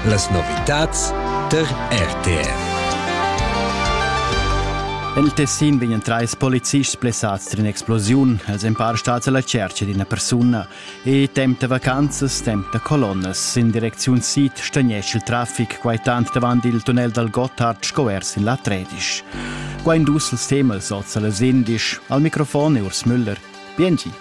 Las novitads tar RTR. En il Tessin vegnan trais polizists blessads tras in'explosiun. Els èn para stads a la tschertga d'ina persuna. E temp da vacanzas, temp da colonnas. In direcziun sid stagnesce il traffic, quai tant davant il tunnel dal Gotthard sco er sin la Tredisch. Qua in dus ils temas oz a las indisch. Al microfon è Urs Müller. Biengi.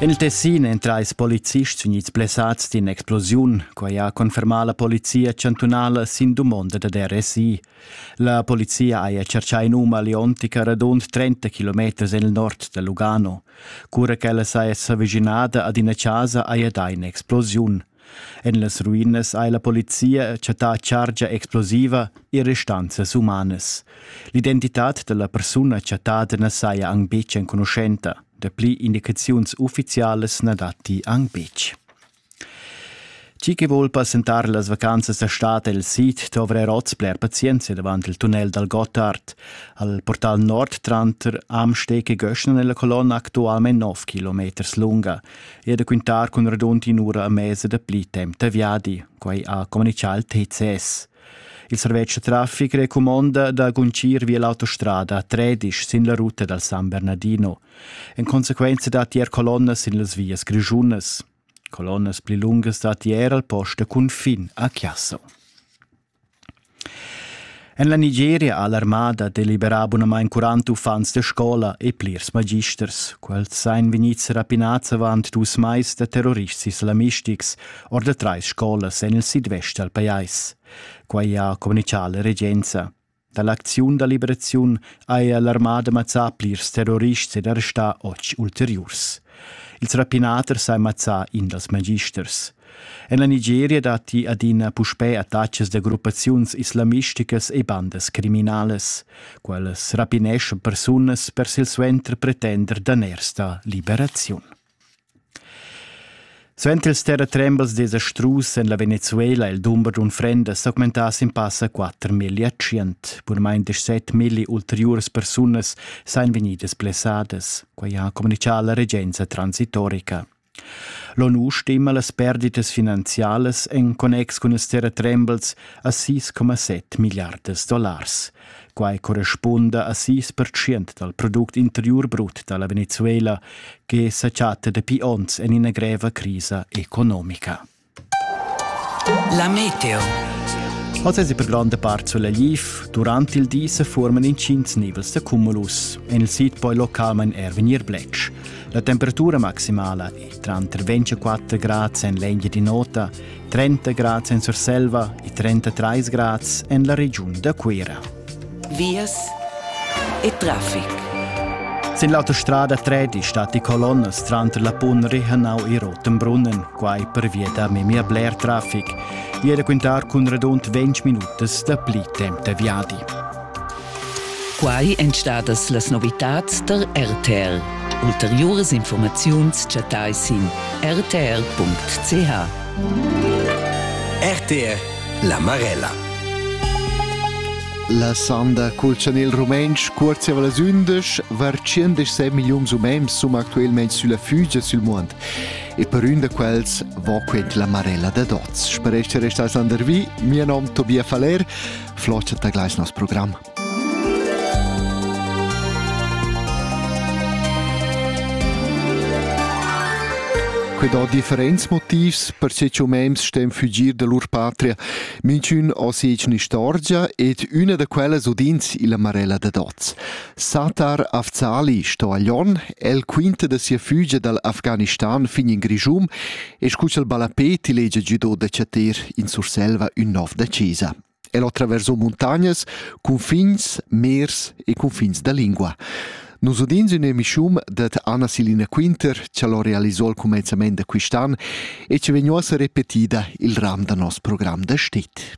En il Tessin èn trais policists vegnids blessads d'ina explosiun. Quai ha confermà la polizia chantunala sin dumonda da RSI. La polizia haja tschertgà in um aliontica radund 30 kilometers en il nord da Lugano. Cura ch'ella saja s'avischinada ad ina chasa haja dà in'explosiun. En las ruinas ha la polizia chattà chargia explosiva e restanzas umanas. L'identitad da la persuna chattada na saja anc betg enconuschenta. Dapli indicaziuns uffizialas na datti anc betg. Chi che vuol passentar las vacanzas da stad el sid dovra oz bler pazienza davant il tunnel dal Gotthard. Al portal nord tranter Amsteg e Göschner nella colonna actualmente 9 km lunga. e da quintar cun radund in'ura a mesa da pli temp da viadi, quai ha comunichà il TCS. Il servetsch da traffic recumonda da guncir via l'autostrada a Tredisch sin la ruta dal San Bernardino. En consequenza datti er colonnas sin las vias grischunas. Colonnas pli lungas datti er al post da cunfin a Chiasso. En la Nigeria ha l'armada deliberà bunamain 40 uffants da scola e plirs magisters. Quels ein vegnids rapinads avant dus mais da terrorists islamistics or da trais scolas en il sidvest dal pajais. Quai ha communicà la regenza. Dall'acziun da liberaziun haja l'armada mazzà plirs terrorists ed arrestà otg ulteriurs. Ils rapinaters han mazzà in dals magisters. En la Nigeria datti adina puspè attacks da gruppaziuns islamisticas e bandas criminales. Quellas rapineschan persunas per silsuenter pretender daners da liberaziun. Suenter ils terratrembels desastrus en la Venezuela ha il dumber d'unfrendas s'augmentà sin passa quatter milliartschient. Purmain deschset milli ulteriuras persunas sajan vegnidas blessadas. Quai ha communitgà la regenza transitorica. L'ONU stima las perditas finanzialas en connex cun ils terratrembels a 6,7 milliardas dollars. Quai correspunda a sis pertschient dal product interiur brut da la Venezuela che sa chatta dapi onns en ina greva crisa economica. La meteo. Oz è per granda part solegliv. Durant il di se forman intgins nivels da cumulus. En il sid poi localmain er vegnir bletsch. La temperatura maximala è tranter 24 grad en l'engia di nota 30 grads en Surselva e 33 grads en la regiun da Cuira. Vias e traffic. Sin l'autostrada 3 stat die Kolonnes tranter la Punri Hanau e Rotenbrunnen, quai pervia da memia bler traffic, e da quintar cun radund 20 minutas da pli temp da viadi. Quai èn stadas las novitads tar RTL. Ulteriuras informaziuns chattai sin rtr.ch. RTL La Marella. La sanda culzan il rumentsch cuort siava las undisch var 116 milliuns umens sum actuelmain sulla fugia sul mund. E per un da quels va quent la marella da dots. Sparesce restas landervi, mia nom Tobia Faler, Flåte da Gleisners program. Quei dà differents motivs per che umens stem fugir da lur patria. Minchün ha segna istorgia ed üna da quellas udins illa Marella da Doz. Satar Afzali sto a Lyon, el quinta da sia fugia dal Afghanistan fin in Grischun e scu ch'el ballapé ti legia gido da chatir in Surselva ün nov da chesa. El attraverso muntagnas, cunfins, mers e cunfins da lingua. Nus udins in emischium dat Anna Silina Quinter, che lo realisò al comenzament da quist'an e che vegnuossa repetida il ram da nos program da stit.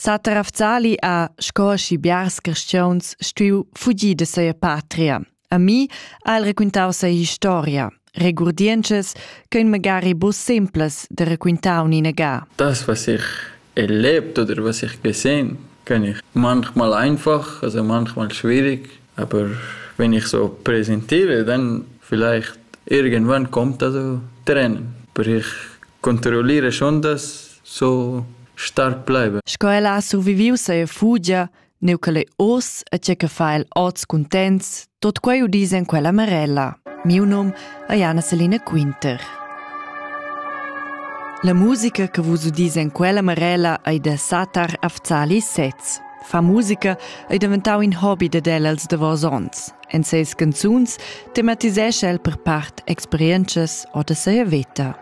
Sater Afzali ha, sco schi biars cristiauns, stuiu fugir da sia patria. A mi ha el raquintau sia historia, regurdientschas ch'ein magari bu simplas da raquintar uninaga. Das, was ich erlebt oder was ich gesehen, kann ich manchmal einfach, also manchmal schwierig, Aber wenn ich so präsentiere, dann vielleicht irgendwann kommt das so Tränen. Aber ich kontrolliere schon das so stark bleiben. Sco ella ha surviviu seia fugia, neu che lei oz e tge che fa el oz cuntents, tot quei udis en quella marella. Miu num è Jana Selina Quinter. La musica che vus udis en quella marella ei da Satar Afzali Setz. Far musica ei daventau in hobi dad el als davos onns. En ses canzuns tematisescha el per part experientschas o da seia veta.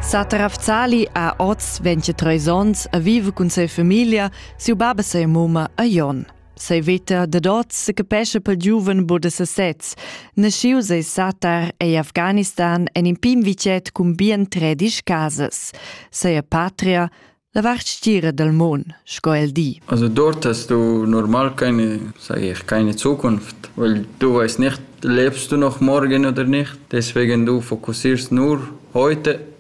Satar Afzali ha oz 23 onns a vive cun sa famiglia, siu baba sa mumma a Jon. Sei veta dad oz se capescha pel giuven bod da sesez. Naschiu sei Satar ei Afghanistan en in pin vicet cun bien tredisch casas. Sei patria, la vart stira dal mon, sco el di. Also dort hast du normal keine, sag ich, keine Zukunft, weil du weißt nicht, lebst du noch morgen oder nicht. Deswegen du fokussierst nur heute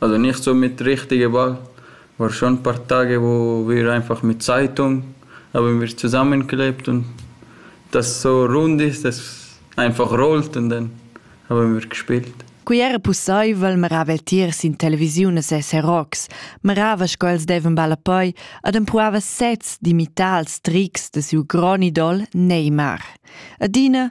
Also nicht so mit richtige Wahl, war schon ein paar Tage, wo wir einfach mit Zeitung haben wir zusammengeklebt und dass es so rund ist, dass es einfach rollt und dann haben wir gespielt. Quei era pusseivel meravel tiers in televisiun e ses herocs, merava sco els deven ballapoi ad empruava sez d'imitar els trics de siu gron idol Neymar. Adina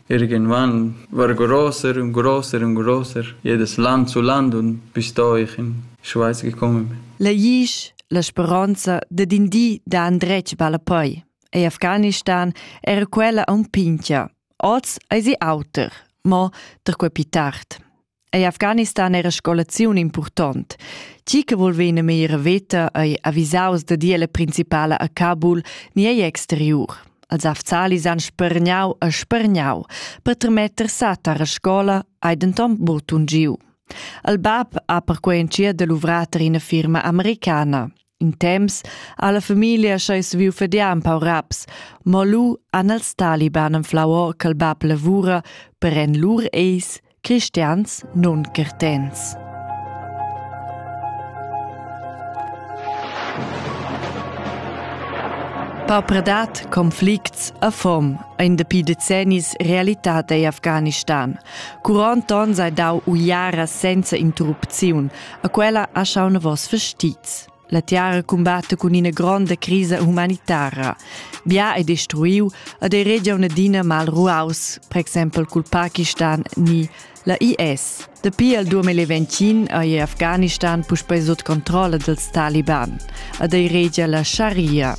Irgendwann var grosser und grosser und grosser, jedes Land zu Land und bis dorthin. Die Schweiz gekommen. La Iisch, la speronza dad in di da andretg balla poi. E Afghanistan era quella un pincha. Oz ei sie auter, mo da quei pi tard. Ei Afghanistan era scolaziun impurtont. Tgi che vul vegnir meglier veta ei avisaus da dir la principala a Kabul ni egl exteriur. Els afzalis han spergnau e spergnau per tremetter satar a scola hai denton buc giu. Il bab ha perquei entschiet da luvrar tar ina firma americana. In temps ha la famiglia scheu saviu fadiar empau raps, mo lu han els taliban anflau or ch'el bab lavura per en lur eis cristians non certens. Paupredad, conflicts a fom ein dapi decennis realitat ei Afghanistan. Curont onn sei dau uiara senza interrupziun, A quella ha schau novos vestits. La tiara combatte cun ina gronda crisa humanitara. Bia è destruiu ad ei regia un'adina mal ruaus, per exempel cul Pakistan ni la IS. Dapi al 2021 ei Afghanistan puspei sut controlla dals Taliban. Ad ei regia la Sharia.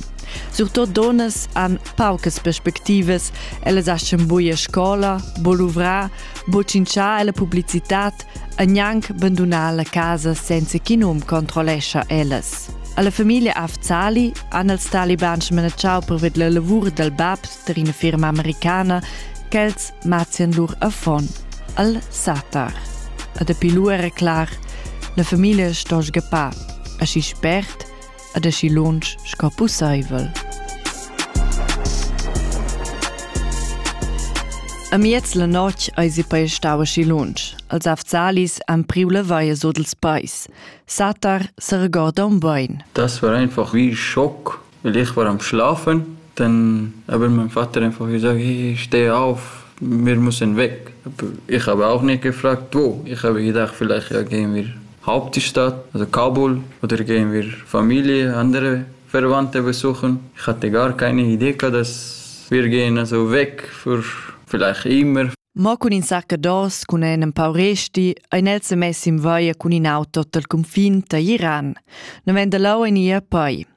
Surtut donas han paucas perspectivas, ellas aschen buia scola, bo luvrar, bo cinciar la publicitat e gnanc bandunar la casa senza ch'in um controllescha ellas. Alla famiglia Afzali han els taliban smanatschau perved la lavur dal bab tar ina firma americana ch'els mazzian lur affon al Satar. E dapi lu era clar, la famiglia sto sgappar. Aschi spert ad aschi lunsch sco pusseivel. Amiez la notg eis ei poi stau aschi lunsch, als Afzalis han priu la vaia sut ils peis. Satar seregorda un bein. Das war einfach wie Schock, weil ich war am Schlafen. Dann habe mein Vater einfach gesagt, hey, ich stehe auf, wir müssen weg. Aber ich habe auch nicht gefragt, wo. Ich habe gedacht, vielleicht ja, gehen wir Hauptstadt oder Kabul oder gehen wir Familie, andere Verwandte besuchen. Ich hatte gar keine Idee, dass wir gehen also weg für vielleicht immer. Mo cun in saccados, cun en pau resti, ein el se messi in vaia cun in auto dal confin da Iran. Non venda lau en ia poi.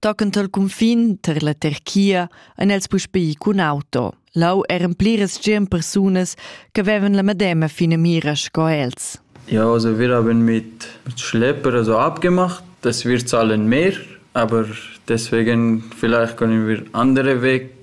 Tockend al cunfin tar la Turchia han els puspè ì cun auto. Lau eran pliras tschient persunas ch'avevan la medema finamira sco els. Ja, also wir haben mit, mit Schlepper also abgemacht. Das wir zahlen mehr, aber deswegen vielleicht können wir andere Weg